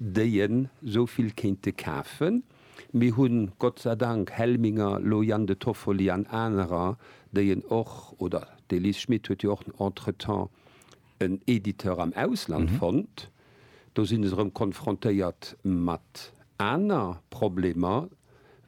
déi en esou vill kéinte kafen. Mir hu Gott sei Dank Helminger, elo Jan de Toffoli an anerer, déi en och, oder d'Elise Schmit huet jo och entretemps en Editeur am Ausland fonnt. Do si se erëm konfrontéiert mat aner Problemer.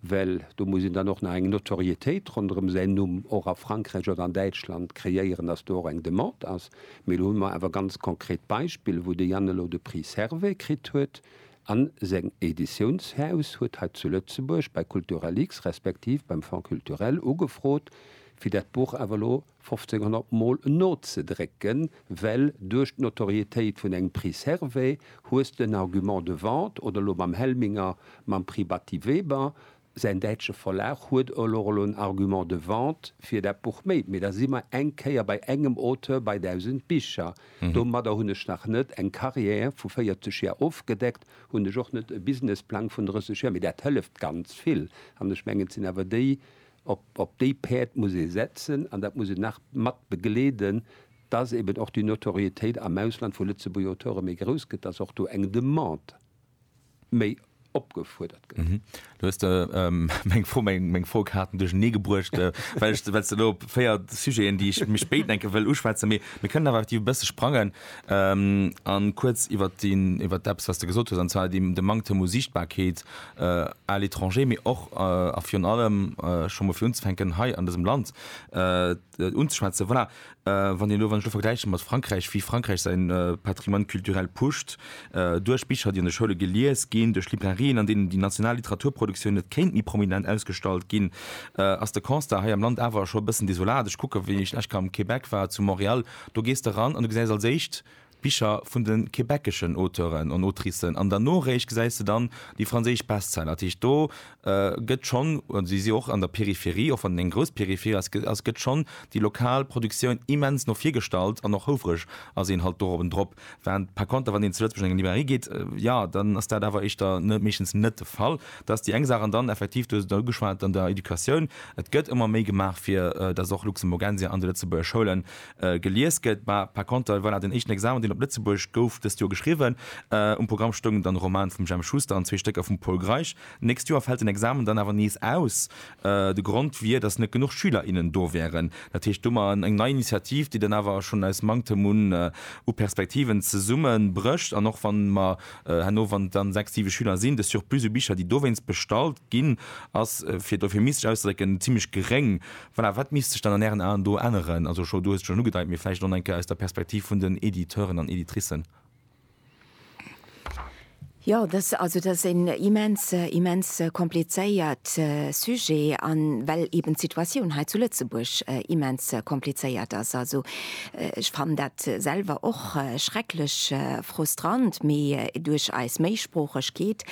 well do muss een dann och nach eng Notoriétéit ronderëm säin Numm och a Frankräich oder an Däitschland kreéieren, dass do och eng Demande ass. Mee elo hu mer awer ganz konkret Beispiller, wou de Jan elo de Prix Servais kritt huet a seng Editiounshaus huet hei zu Lëtzebuerg bei Culturalix respektiv beim Fonds culturel ugefrot, fir dat Buch awer elo, 1500 mol nozedrécken, well duerch d'Notorietéit vun engem Prix Servais hues de en Argument de vente, oder elo mam Helminger mam Prix Batty Weber, säin däitsche Verlag huet elo elo en Argument de vente fir dat Buch méi. Mee da si mer eng Kéier bei engem Auteur bei 1000 Bicher. Domadder hunn ech nach net eng Carrière vu 40 Jar ofgedeckt, hunn ech och net e Businessplang vun 30 Jar, mee dat hëlleft ganz vill. An ech mengen, et sinn awer déi Op déi Päerd muss ee setzen an dat muss een nach mat begleeden, dass eben och déi Notoriétéit am Ausland vu Lëtzebuerger Auteure méi grouss gëtt, dass och do eng Demande méi opgefuerdert gëtt. Du hues de meng Fro, meng Frokaarten duerchernee gebruecht, well ech, well s de elo op véier Sujeten, déi ech méi spéit, denke, wëll uschwätzen. Mee mir kënnen awer effektiv e bësse sprangen a kuerz iwwert deen, iwwert eppes, wat s de gesot hues, an zwar de Manktem u Siichtbarkeet à l'étranger, mee och a virun allem scho mol fir unzefänken hei an dësem Land unzeschwätzen. Voilà, wann Dir elo, wann ech elo vergläiche mat Frankräich, wéi Frankräich säi Patrimoine culturel pusht, duerch Bicher, déi an de Schoule gelies ginn, duerch Librairien, an deenen déi national Literaturproduktioun net kéint méi prominent ausgestallt ginn, ass de Constat hei am Land awer scho e bëssen desolat. Ech kucken, wéi ech lech kann am Québec war, zu Montréal, do gees de ran an du gesäis als éischt, Bicher vun de quebeceschen Auteuren an Autricen an der Noréischt gesäis de dann déi franséisch Bestseller. Dat heescht, do gëtt schonn, si si och an der Peripherie, och wann et eng grouss Peripherie ass, ass, gëtt schonn déi lokal Produktioun immens no vir gestallt an och houfreg ass een halt dorobben drop. Wärend par contre, wann een zu Lëtzebuerg an eng Librairie geet, jo, dann ass dat awer éischter meeschtens net de Fall. Dat ass déi eng Saach. An dann effektiv, du hues et der ugeschwat, an der Educatioun, et gëtt ëmmer méi gemaach, fir dass och Luxemburgensia an de lëtzebuerger Schoulen Gelies gëtt, mä par konter, voilà, den éischten Examen, deen op Lëtzebuerg gouf dëst Joer geschriwwen. Um Programm stoungen dann e Roman vum Jemp Schuster an zwee Stécker vum Pol Greisch. D'nächst Joer fält den Examen dann awer nees aus. De Grond wier, datt net genuch Schüler, innen do wären. Dat heescht domat eng nei Initiativ, déi dann awer schonn aus Manktem un u Perspektiven zesumme brécht. An och wann mer herno, wann et dann sechs, siwe Schüler sinn, de Surplus u Bicher, déi dowéinst bestallt ginn, ass, fir et euphemistes auszedrécken, zimmlech geréng. Voilà, wat misst sech dann an Ären Aen do änneren? Also scho, du hues et schonn ugedeit, mee vläicht och nach eng Kéier aus der Perspektiv vun den Editeuren an Editricen. Jo, dass, also dass een immens, immens komplizéiert Sujet an well eben d'Situatioun hei zu Lëtzebuerg immens komplizéiert ass. Also ech fannen dat selwer och schrecklech frustrant, mee duerch eis Méisproochegkeet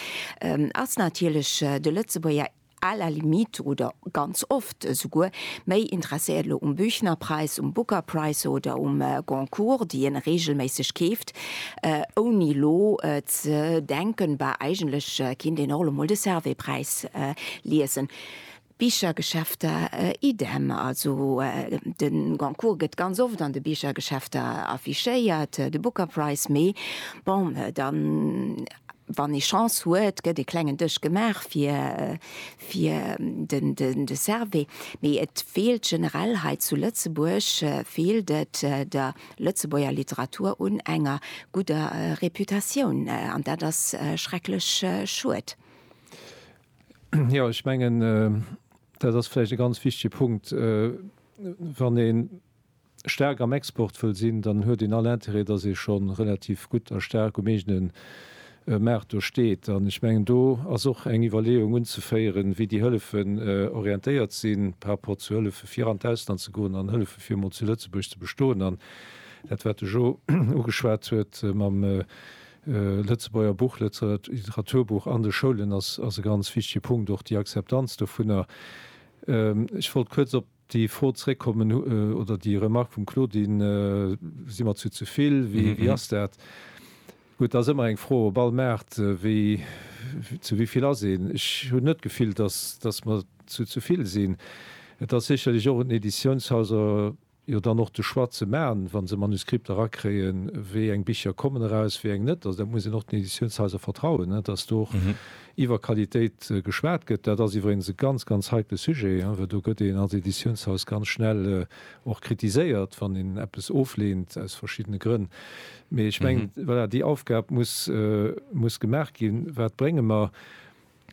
ass natierlech de Lëtzebuerger, À la limite, oder ganz oft esouguer, méi interesséiert elo um Büchnerpreis, um Booker Price oder um Goncourt, déi een reegelméisseg keeft, ouni elo ze denken, bah, eigentlech kinnt een och elo mol de Servais-Präis liesen. Bichergeschäfter idem, also de Goncourt gëtt ganz oft an de Bichergeschäfter affichéiert, de Booker Price, mee bon, dann Wann ee Chance huet, gëtt e klengen Dësch gemaach fir de Servais. Mee et feelt generell hei zu Lëtzebuerg feelt et der Lëtzebuerger Literatur un enger gudder Reputatioun. An dat ass schrecklech schued. Jo, ech mengen, dat ass vläicht e ganz wichtege Punkt. Wann ee staark am Export wëll sinn, dann huet een all Intérêt, dass ee scho relativ gutt a staark um eegene Maart do steet. An ech mengen, do ass och eng Iwwerleeung unzeféieren, wéi déi Hëllefen orientéiert sinn par rapport zu Hëllefe fir an d'Ausland ze goen an Hëllefe fir emol zu Lëtzebuerg ze bestoen. An dat, wat de Jo ugeschwat huet mam Lëtzebuerger Buch, Literaturbuch an de Schoulen, ass e ganz wichtege Punkt, och déi Akzeptanz dovunner. Ech wollt kuerz op. Déi Fro zréckkommen, oder déi Remark vum Claudine, si mer zu ze vill, wéi ass dat? Gutt, dat ass ëmmer eng Fro op all Maart, wéi, zu wéi vill ass een? Ech hunn net d'Gefill, dass, dass mer zu ze vill sinn. Et ass sécherlech och un den Editiounshaiser jo dann och de Choix ze maachen, wa se Manuskripter erakréien, wéi eng Bicher kommen eraus, wéi eng net. Also dat muss een och den Editiounshaiser vertrauen, dass do och Iwwer Qualitéit geschwat gëtt, dat ass iwwregens e ganz, ganz heikle Sujet, well do gëtt een als Editiounshaus ganz schnell och kritiséiert, wann een eppes ofleent aus verschiddene Grënn. Mee ech mengen, voilà, déi Aufgab muss, muss gemaach ginn, Wat brénge mer?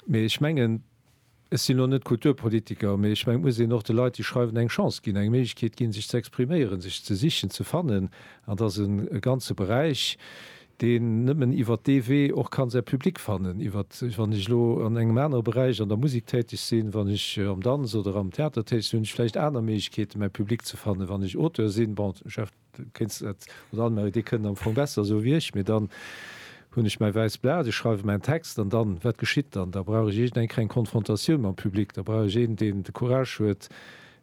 Mee ech mengen, ech sinn elo net Kulturpolitiker, mee ech mengen, et muss een och de Leit, déi schreiwen, eng Chance ginn, eng Méiglechkeet ginn, sech ze expriméieren, sech ze sichen, ze fannen. An dat ass e ganze Beräich, deen nëmmen iwwert dee Wee och kann säi Public fannen, iwwert, wann ech elo an engem anere Beräich an der Musek täteg sinn, wann ech am Danz oder am Theater täteg sinn, hunn ech vläicht aner Méiglechkeeten, mäi Public ze fannen. Wann ech Auteur sinn, bon, Jeff, du kéints dat, oder Anne-Marie, dir kënnt am Fong besser esou wéi ech, mee dann hunn ech mäi wäisst Blat, ech schreiwe mäin Text an dann, wat geschitt dann? Da brauch ech iergendeng Konfrontatioun mam Public, da brauch ech een, deen de Courage huet,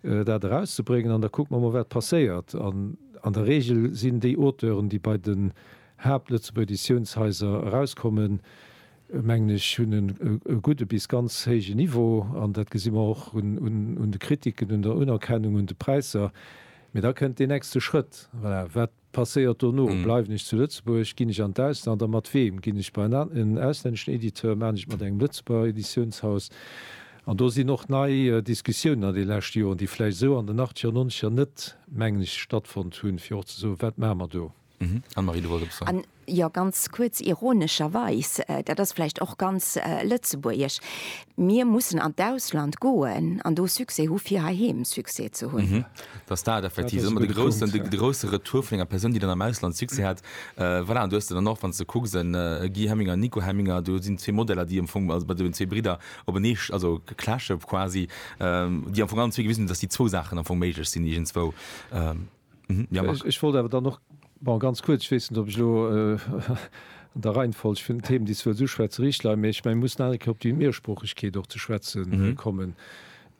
dat erauszebréngen an da kucke mer mol wat passéiert an an der Regel sinn déi Auteuren déi bei den Haapt-Lëtzebuerger Editiounshaiser erauskommen mengen ech hunn en e gudde bis ganz héije Niveau an dat gesi mer och un un de Kritiken, un der Unerkennung, un de Präisser. Mee da kënnt deen nächste Schrëtt, voilà, wat. Passéiert dono? Bleiwen ech zu Lëtzebuerg? Ginn ech an d'Ausland? A mat weem? Ginn ech bei en auslänneschen Editeur? Maachen ech et mat engem Lëtzebuerger Editiounshaus? An do sinn och nei Diskussiounen an de leschte Joren, déi vläicht esou an den Achtzeger an Nonzeger net, mengen ech, stattfonnt hunn, fir och ze soen, Wat maache mer do? Anne-Marie, du wollts eppes soen. Jo, ganz kuerz, ironescherweis, dat ass vläicht och ganz lëtzebuergesch, Mir mussen an d'Ausland goen an do Succès hu fir heiheem Succès ze hunn. Hm, dass dat effektiv ëmmer de groussen, de grousse Retour vun enger Persoun, déi dann am Ausland Succès hat, voilà. An du hues de dann och, wann s de kucks, e Guy Hemminger, e Nico Hemminger, do sinn zwee Modeller, déi am Fong, also bei deenen zwee Bridder openee, also clashe quasi, déi am Fong allen zwee gewisen hunn, dass déi zwou Saachen am Fong méiglech sinn iergendswou. Ech wollt awer dann och ganz kuerz, ech weess net, ob ech elo an der Reihenfolg vun den Themen, déi ech wëllt uschwätzen, richteg leien, mä ech mengen, mir mussen nach eng Kéier op déi Mehrsproochegkeet och ze schwätze kommen,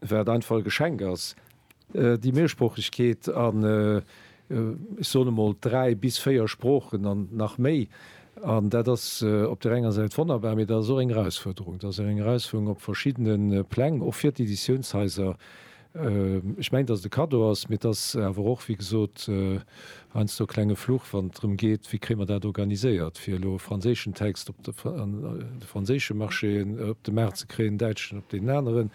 wat einfach e Geschenk ass, déi Mehrsproochegkeet an, ech soen emol, dräi bis véier Sproochen an nach méi. An dat ass op där enger Säit wonnerbar, mä dat ass och eng Erausfuerderung. Dat ass eng Erausfuerderung op verschiddene Pläng, och fir d'Editiounshaiser, Ech mengen, dass et e Kaddo ass, mee et ass awer och, wéi gesot, heiansdo e klenge Fluch, wann et drëm geet, wéi kréie mer dat organiséiert, fir elo e franséischen Text op de franséische Marché, op de Maart ze kréien, en däitschen op deen aneren,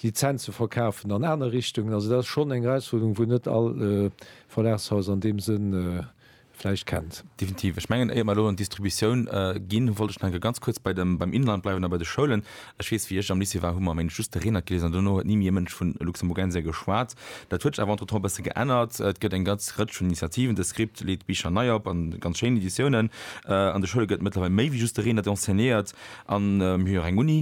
Lizenze verkafen an aner Richtungen. Also dat ass schonn eng Erausfuerderung, wou net all Verlagshaus an deem Sënn vläicht kennt. Definitiv. Ech mengen, éier mer elo an d'Distributioun ginn, wollt ech nach eng Kéier ganz kuerz bei dem, beim Inland bleiwen a bei de Schoulen. Ech weess, wéi ech am Lycée war, hu mer, meng ech, just de Reenert geliesen an duerno huet ni méi e Mënsch vu Luxemburgensia geschwat. Dat huet sech awer entretemps e bësse geännert. Et gëtt eng ganz Rëtsch vun Initiativen. De Script leet Bicher nei op a ganz schéin Editiounen. An de Schoule gëtt mëttlerweil méi wéi just de Reenert enseignéiert an mir hu jo och eng Uni.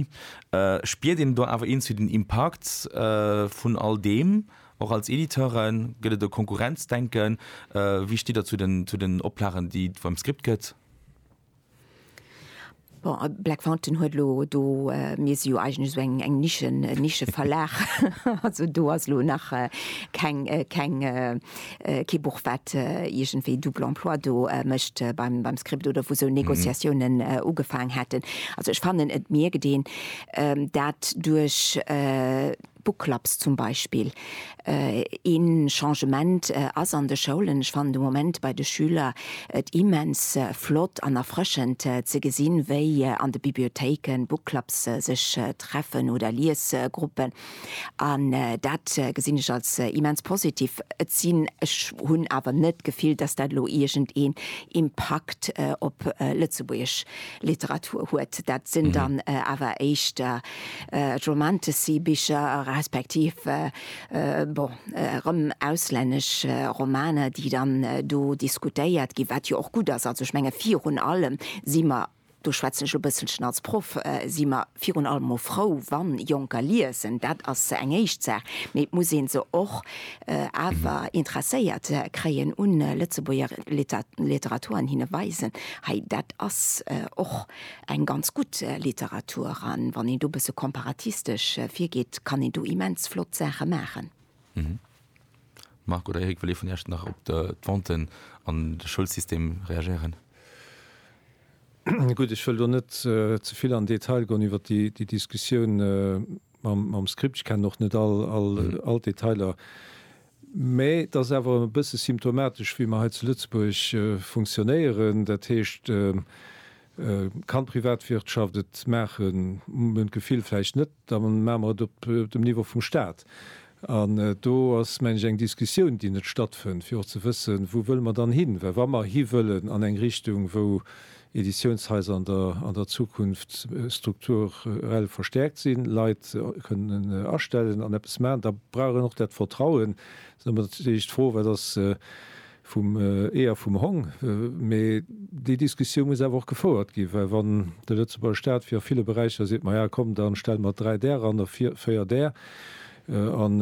Spiert een do awer iergendwéi den Impakt vun all deem? Och als Editeure gëtt et e Konkurrenzdenken. Wéi stitt Der zu den Oplagen, déi et beim Script gëtt? Bon, Black Fountain huet elo do, mir si jo eigentlech esou eng Nische, Nischeverlag, also do ass elo nach keng, keng, kee Buch, wat iergendwéi double emploi do mécht beim Script oder wou esou Negociatiounen ugefaang hätten. Also ech fannen, et mierkt een dat duerch Book Clubs zum Beispill. Ee Changement ass an de Schoulen, ech fannen de Moment bei de Schüler et immens flott an erfrëschend ze gesinn, wéi an de Bibliothéike Book Clubs sech treffen oder Liesgruppen. An dat gesinn ech als immens positiv. Et sinn, ech hunn awer net d'Gefill, dass dat elo iergendeen Impakt op lëtzebuergesch Literatur huet. Dat sinn dann awer éischter Romantasy-Bicher, respektiv bon erëm auslännesch Romaner, déi dann do diskutéiert ginn, wat jo och gutt ass. Also ech menge virun allem si mer, do schwätzen ech e bësselchen als Proff, si mer virun allem mol frou, wa Jonker liesen. Dat ass eng éischt Saach. Mee et muss ee se och awer interesséiert kréien u Lëtzebuerger Literatur an hinne weisen, hei dat ass och Eng ganz gutt Literatur an wann een do bësse komparatistesch virgeet, kann een do immens flott Saache maachen. Marc oder Eric, wëll ee vun Iech nach op d'Venten an de Schoulsystem reagéieren? Gutt, ech wëll do net ze vill an Detail goen iwwer déi Diskussioun mam Script. Ech kennen och net all d'Detailer. Mä et ass awer e bësse symptomatesch, wéi mer hei zu Lëtzebuerg funktionéieren. Dat heescht, et kann d'Privatwirtschaft et maachen, hu mer d'Gefill, vläicht net, da maache mer et op dem Niveau vum Stat. An do ass, mengen ech, eng Diskussioun, déi net stattfënnt, fir och ze wëssen, wou wëlle mer dann hin. Well wa mer hiwëllen an eng Richtung, wou Editiounshaiser an der Zukunft strukturell verstäerkt sinn, Leit kënnen astellen an eppes maachen, da brauch een och dat Vertrauen. Dann ass natierlech d'Fro, wat ass vum Ee a vum Hong? Mee déi Diskussioun muss awer och gefouert ginn, well wann de Lëtzebuerger Staat, wéi a ville Beräicher, seet, Maja komm, da stelle mer dräi där eran a véier där, An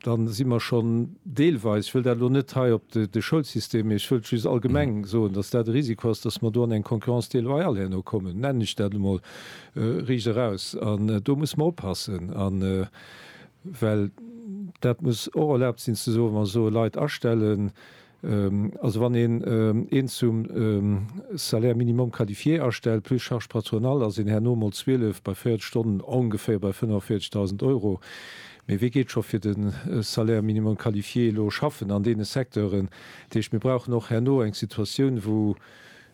da si mer schonn deelweis, ech wëll dat elo net hei op de Schoulsystem, mee ech wëllt just allgemeng soen, dass dat e Risiko ass, dass mer do an eng Concurrence déloyale herno kommen, nennen ech dat emol riicht eraus. An do musse mer oppassen, well dat muss och erlaabt sinn ze soen, wa mer soe Leit astellen, Also wann een een zum Salaire minimum qualifié astellt, plus charges patronales, ass een herno mol 12 bei 40 Stonnen ongeféier bei 45.000 Euro. Mee wee geet scho fir de Salaire minimum qualifié elo schaffen an deene Secteuren? Dat heescht, mir brauchen och herno eng Situatioun, wou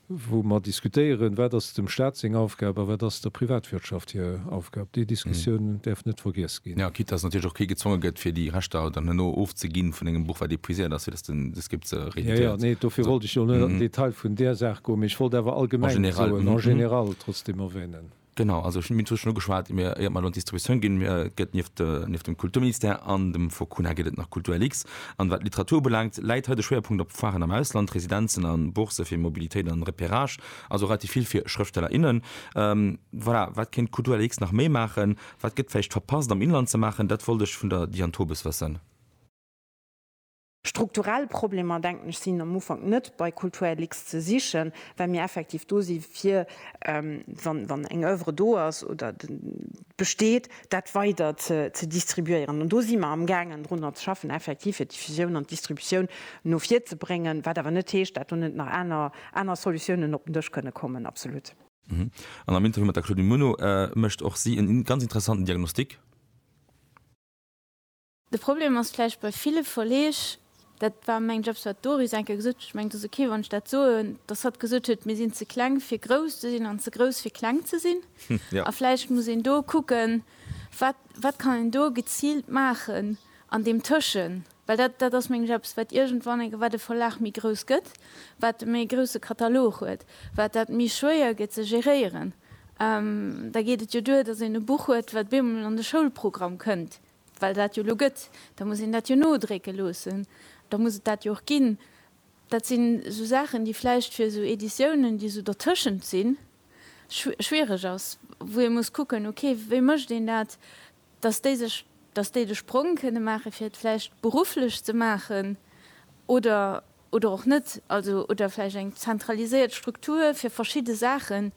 wou mer diskutéieren, wat ass dem Stat seng Aufgab a wat ass der Privatwirtschaft hir Aufgab. Déi Diskussioun däerf net vergiess ginn. Jo, quitte dass natierlech och kee gezwonge gëtt, fir déi Rechter dann herno ofzeginn vun engem Buch, wat épuiséiert ass, fir dass den de Skip se rééditéiert. Jo, jo, nee, dofir wollt ech jo net an den Detail vun där Saach goen, mee ech wollt awer allgemeng soen, en général, trotzdeem erwänen. Genau, also ech hunn d'Mine Touche schonn ugeschwat, mir, éiert mer elo an d'Distributioun ginn, mir gëtt nieft, nieft dem Kulturministère an dem Focuna gëtt et nach Kultur-LX. An wat d'Literatur ubelaangt, läit hei de Schwéierpunkt op Foiren am Ausland, Residenzen a Bourse fir Mobilitéit an Repérage, also relativ vill fir Schrëftsteller, innen. Voilà, wat kéint d'Kultur-LX nach méi maachen? Wat gëtt vläicht verpasst am Inland ze maachen? Dat wollt ech vun der Diane Tobes wëssen. Strukturell Problemer, denken ech, sinn am Ufank net bei Kulturlux ze sichen, well mir effektiv do si fir, wann eng Oeuvre do ass oder besteet, dat weider ze distribuéieren. An do si mer amgaangen drunner ze schaffen, effektiv fir d'Diffusioun an d'Distributioun no vir ze bréngen, wat awer net heescht, dat do net nach aner Solutiounen op den Dësch kënne kommen. Absolut. An am Interview mat der Claudine Muno mécht och si e ganz interessanten Diagnostic. De Problem ass vläicht bei ville Verleeg, dat war meng Jobs, wat d'Doris eng Kéier gesot huet, ech mengen, et ass okay, wann ech dat soen, dass hatt gesot huet, mir sinn ze kleng, fir grouss ze sinn an ze grouss, fir kleng ze sinn. A vläicht muss een do kucken, wat, wat kann een do geziilt maachen an deem Tëschen. Well dat, dat ass meng Jobs, wat iergendwann eng, wat e Verlag méi grouss gëtt, wat e méi grousse Katalog huet, wat dat méi schwéier gëtt ze geréieren. Da geet et jo duer, dass een e Buch huet, wat bemol an de Schoulprogramm kënnt, Well dat jo elo gëtt, da muss een dat jo nodrécke loossen, da muss et dat jo och ginn. Dat sinn esou Saachen, déi vläicht fir esou Editiounen, déi esou dertëschent sinn, schwiereg ass, wou ee muss kucken, ok, wéi mécht een dat, dass déi sech, dass déi de Sprong kënne maachen, fir et vläicht berufflech ze maachen oder. oder och net, also oder vläicht eng zentraliséiert Struktur fir verschidde Saachen,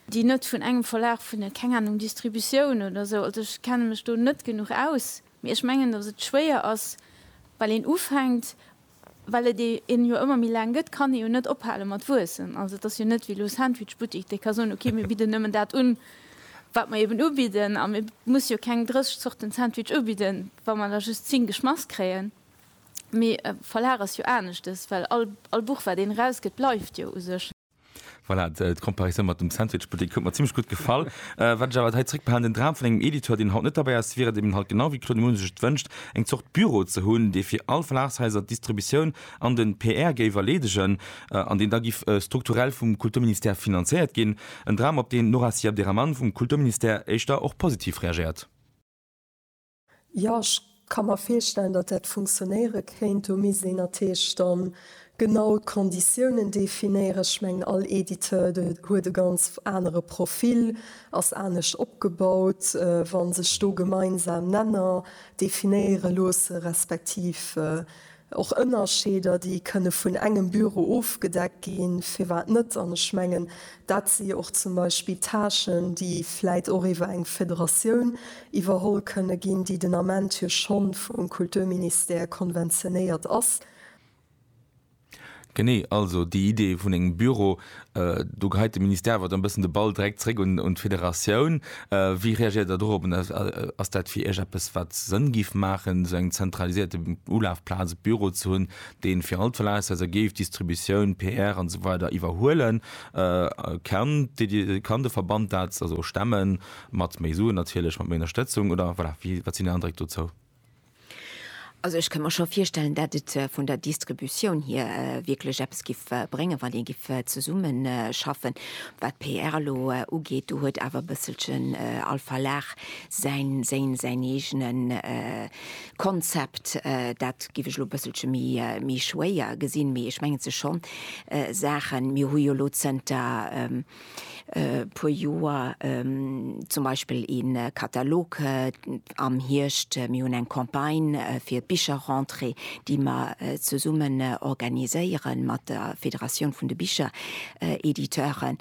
déi net vun engem Verlag, vun der, keng Ahnung, Distributioun oder esou, also ech kenne mech do net genuch aus, mee ech mengen, datt et schwéier ass, well een ufänkt, well et een jo ëmmer méi laang gëtt, kann ee jo net ophale mat wuessen. Also et ass jo net wéi elo Sandwichbuttik, dee ka soen, okay, mir bidden nëmmen dat un, wat mer eben ubidden, a mir musse jo keng 30 Zorten Sandwich ubidden, wa mer der just 10 geschmass kréien. Mee e Verlag ass jo aneschtes, well all Buch, wat een erausgëtt, bleift jo u sech. Voilà, d'Comparisou mat dem Sandwichbuttek huet mer zimlech gutt gefall. Wat ech awer hei zréckbehalen, den Dram vun engem Editeur, deen haut net derbäi ass, wier et eben halt, genau wéi Claude Muno sech et wënscht, eng Zort Büro ze hunn, dee fir all Verlagshaiser d'Distributioun an de PR géif erleedegen an deen da giff strukturell vum Kulturministère finanzéiert ginn. En Dram, op deen d'Nora Siabderahman vum Kulturministère éischter och positiv reagéiert. Jo, ech ka mer virstellen, datt dat funktionéiere kéint. Do misst een natierlech da genau d'Konditiounen definéieren. Ech mengen, all Editeur huet e ganz anere Profil, ass anescht opgebaut. Wa sech do gemeinsam Nenner definéiere loosse respektiv Och Ënnerscheeder, déi kënne vun engem Büro ofgedeckt ginn, firwat net? An ech mengen, dat si jo och zum Beispill Tâchen, déi vläit och iwwer eng Federatioun iwwerholl kënne ginn, déi den Ament jo schonn vum Kulturministère konventionéiert ass. Genee, also déi Idee vun engem Büro, do geheit de Ministère awer dann e bëssen de Ball direkt zréck un d'Federatioun. Wéi reagéiert Der dorop? Ass dat fir Iech eppes, wat Sënn géif maachen, esou eng zentralisierte Ulafplaz, e Büro ze hunn, dee fir all d'Verlagshaiser géif d'Distributioun, PR an esou weider iwwerhuelen? Kann de Verband dat also stemmen, mat méi Suen natierlech, mat méi Ënnerstëtzung oder, voilà, wat sinn Är Andréck dozou? Also ech kënn mer scho virstellen, dat et vun der Distributioun hier wierklech eppes giff bréngen, wann ee giff zesummen schaffen. Wat d'PR elo ugeet, do huet awer e bësselchen all Verlag säin, séin, säin eegene Konzept. Dat giff ech elo e bësselche méi, méi schwéier gesinn. Mee ech mengen, et si scho Saachen, mir hu jo elo zënter, puer Joer zum Beispill e Katalog am Hierscht, mir hunn eng Campagne fir d'Bicherrentrée, déi mer zesummen organiséiere mat der Federatioun vun de Bicherediteuren.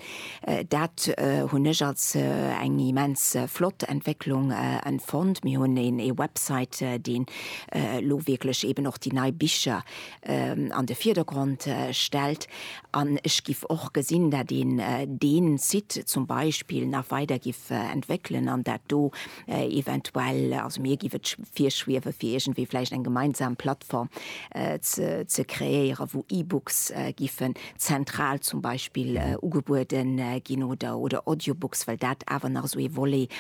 Dat hunn ech als eng immens flott Entwécklung empfonnt. Mir hunn ee Website, deen elo wierklech eeben och déi nei Bicher an de Virdergrond stellt. An ech giff och gesinn, dat een deen Site zum Beispill nach weider giff entwéckelen an dat do eventuell, also mir giff et virschwiewen, fir iergendwéi vläicht eng gemeinsam Plattform ze kreéieren, wou E-Books giffen zentral zum Beispill ugebueden ginn oder Audiobooks, well dat awer nach esou ee Volet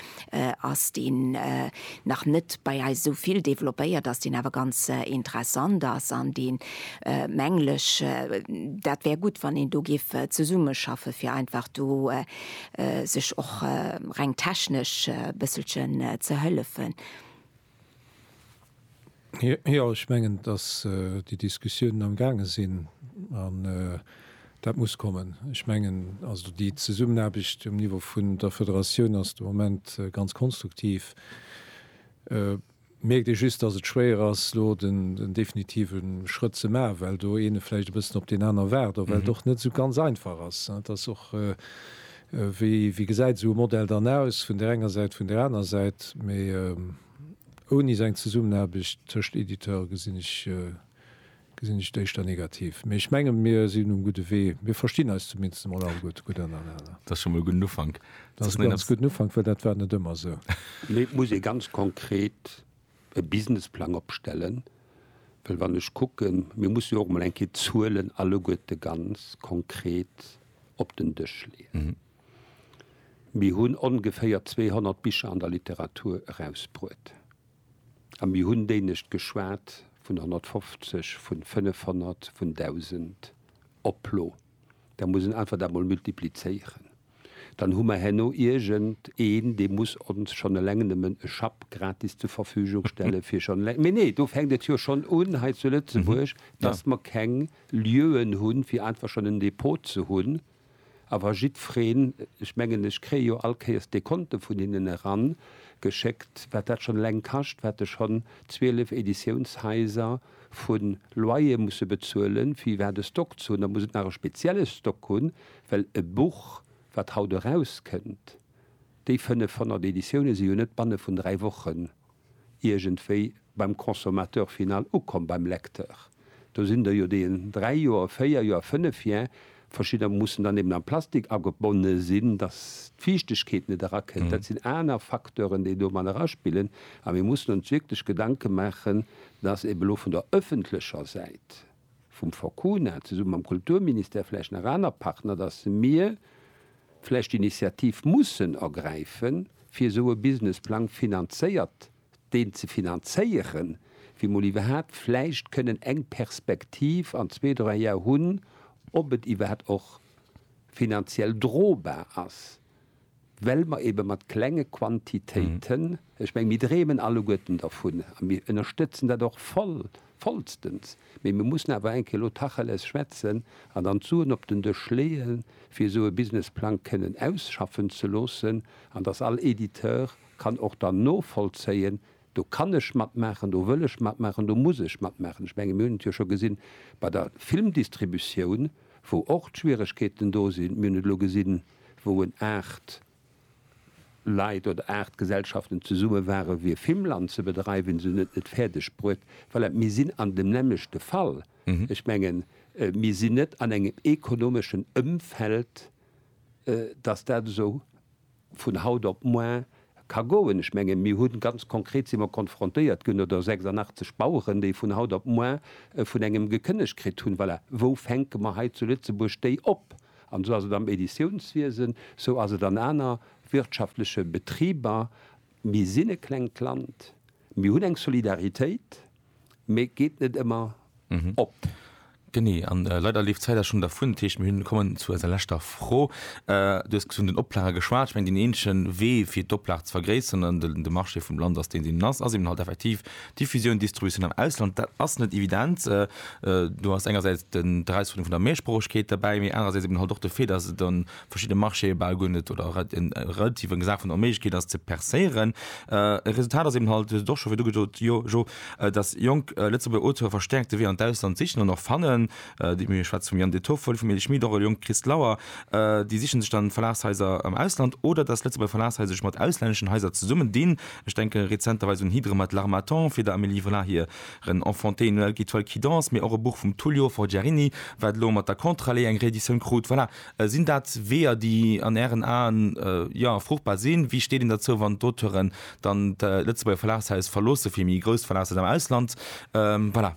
ass deen nach net bei eis esou vill développéiert ass, deen awer ganz interessant ass an dee mengen ech dat wär gutt wann een do géif zesummeschaffen, fir einfach do sech och reng technesch e bësselchen ze hëllefen. Jo, ech mengen, dass déi Diskussiounen am gaange sinn an dat muss kommen. Ech mengen also, déi Zesummenaarbecht um Niveau vun der Federatioun ass de Moment ganz konstruktiv. Mierkt ee just, dass et schwéier ass elo den definitive Schrëtt ze maachen, well do een vläicht e bëssen op deen aner waart, well et och net esou ganz einfach ass. Et ass och. Wéi gesäit esou e Modell dann aus, vun där enger Säit, vun där aner Säit? Mee ouni esou eng Zesummenaarbecht tëscht Editeur gesinn ech et éischter negativ. Mee ech menge mir sinn um gudde Wee. Mir verstinn eis zumindest emol all gutt, gutt ënnerenner. Dat ass scho mol e gudden Ufank. Dat ass e ganz gudden Ufank, well dat war net ëmmer esou. Mee et muss ee ganz konkret e Businessplang opstellen, well wann ech kucken, mir mussen jo och emol eng Kéier d'Zuelen alleguerte ganz konkret op den Dësch leeën. Mir hunn ongeféier 200 Bicher an der Literatur erausbruet a mir hunn dénegt geschwat vun 150, vun 500, vun 1.000 Oplo. Da muss een einfach dat mol multiplizéieren. dann hu mer herno iergend een, dee muss ons schonn eleng nëmmen e Schapp gratis zur Verfügung stelle fir schonn eleng, mee nee, do fänkt et jo schonn un hei zu Lëtzebuerg, dass mer keng Lieuen hunn, fir einfach schonn en Depot ze hunn. A wa jiddwereen, ech mengen, ech kréie jo all Kéiers Dekonte vun hinnen eran geschéckt, wat dat schonn eleng kascht, wat ech schonn 12 Editiounshaiser vu Loyer musse bezuelen, fir iwwerhaapt e Stock ze hunn, da muss et nach e spezielle Stock hunn, Well e Buch, wat haut erauskënnt, déi 500 Editioune si jo net banne vun dräi Wochen iergendwéi beim Consommateur final ukomm, beim Lecteur. Do sinn der jo, déi en dräi Joer, véier Joer, fënnef Joer, verschidder mussen dann eben am Plastik agebonne sinn, datt d'Fiichtegkeet net erakënnt. Dat sinn aner Facteuren, déi do mat eraspillen. A mir mussen ons wierklech Gedanke maachen, datt eben elo vun der ëffentlecher Säit, vum Forcuna, zesumme mam Kulturministère, vläicht nach aner Partner, datt mir vläicht d'Initiativ mussen ergräife fir esou e Businessplang finanzéiert, deen ze finanzéieren, fir mol iwwerhaapt vläicht kënnen eng Perspektiv an zwee, dräi Jar hunn, ob et iwwerhaapt och finanziell drobar ass. well mer eebe mat klenge Quantitéiten, ech meng, mir dreemen alleguerten dervun a mir ënnerstëtzen dat och voll, vollstens, mee mir mussen awer eng Kéier elo Tacheles schwätzen an dann d'Suen op den Dësch leeë fir esou e Businessplang kënnen ausschaffen ze loossen an dass all Editeur kann och dann novollzéien, do kann ech matmaachen, do wëll ech matmaachen, do muss ech matmaachen. Ech menge mir hunn et jo scho gesinn bei der Filmdistributioun, wou och d'Schwieregkeeten do sinn, mir hunn et elo gesinn, wou en 8 Leit oder 8 Gesellschaften zesumme ware fir Fimmland ze bedreiwen, se hunn et net fäerdeg bruet. Voilà, mir sinn an dem nämmlechte Fall. Ech mengen, mir sinn net an engem ekonomeschen Ëmfeld, datt dat esou vun haut op moar ka goen. Ech mengen, mir hunn, ganz konkret si mer konfrontéiert ginn, oder 86 Baueren, déi vun haut op moar vun engem gekënnegt kritt hunn. Voilà, wou fänke mer hei zu Lëtzebuerg déi op? An esou ass et am Editiounswiesen, esou ass et an aner wirtschaftleche Betriber. Mir sinn e klengt Land, mir hunn eng Solidaritéit, mee et geet net ëmmer op. Genee, a leider leeft d'Zäit awer schonn dervun. Dat heescht, mir kommen zu eiser leschter Fro. Du hues vun den Oplage geschwat. Ech mengen, deen eenzege Wee, fir d'Oplag ze vergréisseren an de Marché vum Land ass deen, deen en ass, ass eben halt effektiv Diffusioun, Distributioun am Ausland, dat ass net evident. Do ass engersäits d'Erausfuerderung vun der Mehrsproochegkeet derbäi, mee anerersäits eben halt och de Fait, dass et a verschiddene Marchéë bal guer net oder relativ eng Saach vun der Onméiglechkeet ass, ze percéieren. E Resultat ass eben halt, och scho fir du gesot, jo, jo, dass jonk Lëtzebuerger Auteure verstäerkt de Wee an d'Ausland sichen an och fannen. Mir schwätze vum Yann De Toffel, vum Elie Schmit, och e jonke Christ Lauer. Déi siche sech dann Verlagshaiser am Ausland oder dass Lëtzebuerger Verlagshaiser sech mat auslänneschen Haiser zesummendinn. Ech denke rezenterweis un Hydre mat L'Harmattan, fir der Amélie Vollard hiren Enfanté Noël qui toile qui danse, mee och e Buch vum Tullio Forgiarini, wat elo mat der Contre-allée eng Reeditioun krut. Voilà, sinn dat Weeër, déi an Ären Aen, jo, fruchtbar sinn? Wéi steet een derzou, wann d'Auteuren dann d'Lëtzebuerger Verlagshaus verloosse fir méi grouss Verlagshaus am Ausland? Voilà.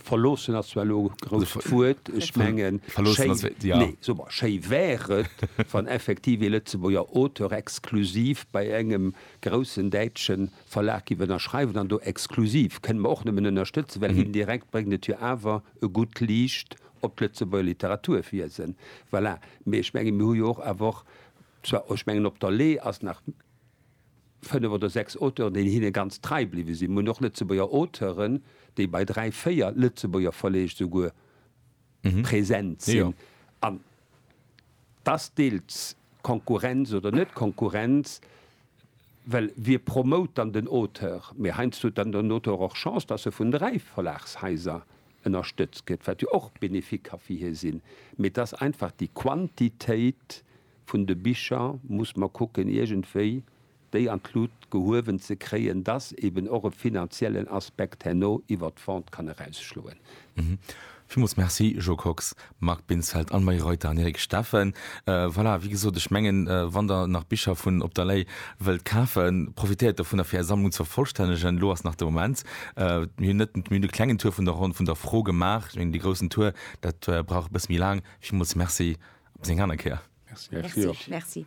Verloossen ass zwar elo e grousst Wuert. Ech mengen, schéi wär et, wann effektiv ee Lëtzebuerger Auteur exklusiv bei engem groussen däitsche Verlag géif ënnerschreiwen. An do exklusiv kënne mer och nëmmen ënnerstëtzen, well indirekt bréngt et jo awer e gutt Liicht op d'Lëtzebuerger Literaturwiesen. Voilà. Mee ech mengen, mir hu jo och awer och zwar, ech mengen, op der Lee ass nach, fënnef oder sechs Auteuren, déi hinne ganz trei bliwwe sinn. Mir hunn och Lëtzebuerger Auteuren, déi bei dräi, véier Lëtzebuerger Verleeg esouguer present sinn. An dass deels Konkurrenz oder net Konkurrenz, well wie promote dann den Auteur? Mee heiansdo huet dann den Auteur och Chance, dass e vun dräi Verlagshaiser ënnerstëtzt gëtt, wat jo och bénéfique ka fir hie sinn. Mee et ass einfach déi Quantitéit, vun de Bicher muss mer kucken iergendwéi déi an d'Lut gehuewen ze kréien, dass eben och e finanziellen Aspekt herno iwwert d'Vente kann erausschloen. Villmools Merci Jo Kox, Marc Binsfeld an Marie Reuter an Eric Steffen. Voilà, wéi gesot, ech mengen, wann der nach Bicher vun Op der Lay wëllt kafen, profitéiert dovunner fir Är Sammlung ze vervollstännegen, elo ass nach de Moment. Mir hunn net, mir hunn e klengen Tour vun der Ronn vun der Fro gemaach. Ech mengen, dee groussen Tour, dat brauch e bësse méi laang. Villmools Merci, op bis eng aner Kéier. Merci. Merci.